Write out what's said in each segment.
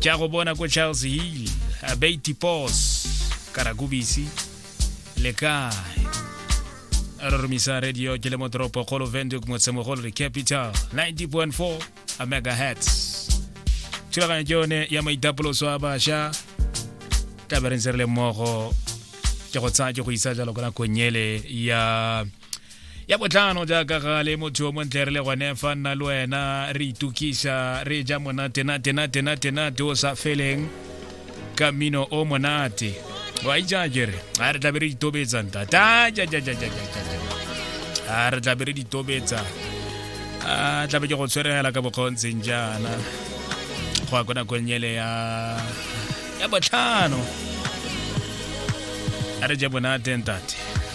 ke a go bona ko charles hill abeity pos karakubisi le kae a re romisa radio ke le mo toropo kgolo venduk motsemogolo re capital 90.4 a megahertz thulaganyo ke yone ya maitapoloso a bašwa taberentse re le mmogo ke go tsaya ke go isa jalo ko nakong ele ya ya botlhano jaaka gale motho o montle re le gone fa nna le wena re itukisa re ja monatenatenatenatenate o sa feleng ka mmino o monate wa itsa kere a re tlabe re ditobetsa ntata a re tlabe re ditobetsa a tlabe ke go tshweregela ka bokgontseng jaana go ya ko nakong ele ya ya botlhano a re je bonate ntate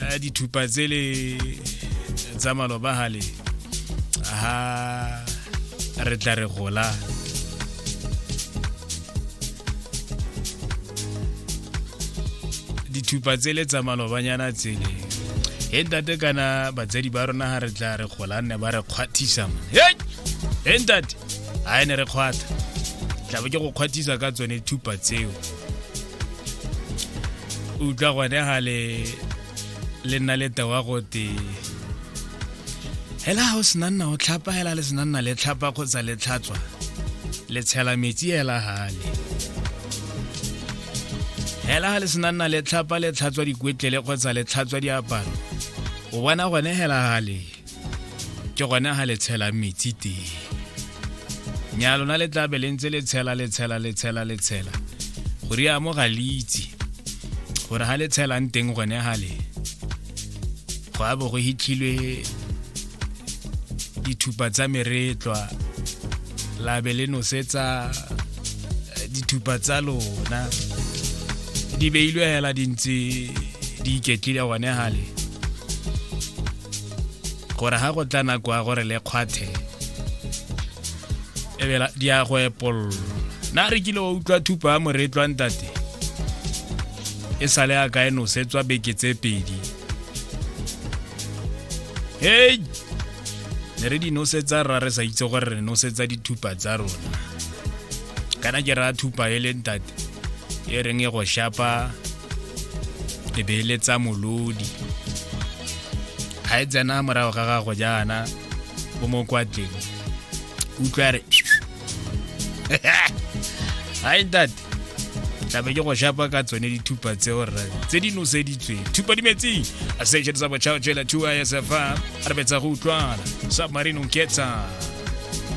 a dithupa tsele tsa malobagale ha re tla re gola dithupa tsele tsa malobanyana tsele he ntate kana batsadi ba rona ha re tla re gola nne ba re kgwathisa he ntate a ne re kgwatha tlabe ke go kgwathisa ka tsone thupa tseo utlwa gone ga le le nna le tewa gote hela ga o sena nna o tlhapa hela le sena nna le tlhapa kgotsa le tlhatswa le tshela metsi hela gale hela ga le sena nna le tlhapa le tlhatswa dikwetlele kgotsa le tlhatswa diaparo o bona gone hela gale ke gone ga le tshela metsi teng nya lona le tla be le ntse le tshela le tshela le tshela le tshela go ri amo ga le itse gore ga le tshelang teng gone ga le go a bo go hitlhilwe dithupa tsa meretlwa la be le nosetsa eh, dithupa tsa lona di beilwe hela di ntse di iketlile gone gale gore ga go tla nako ya gore le kgwathe ebela di ya go epollo na re kile wa utlwa thupa ya moretlwa ntate e sale a kae nosetswa beke tse pedi hei ne re di nosetsa rra re sa itse gore re nosetsa dithupa tsa rona kana ke raya thupa e le ntate e reng e go shapa le beeletsa molodi ga e tsena morago ga gago jaana o mo kwatleng utlwa re hai date tlabe ke go shapa ka tsone dithupa tseo rra tse di noseditsweng thupa di metsing a station sa botšhao jela 2 isfa re betsa go utlwana submarine nketsa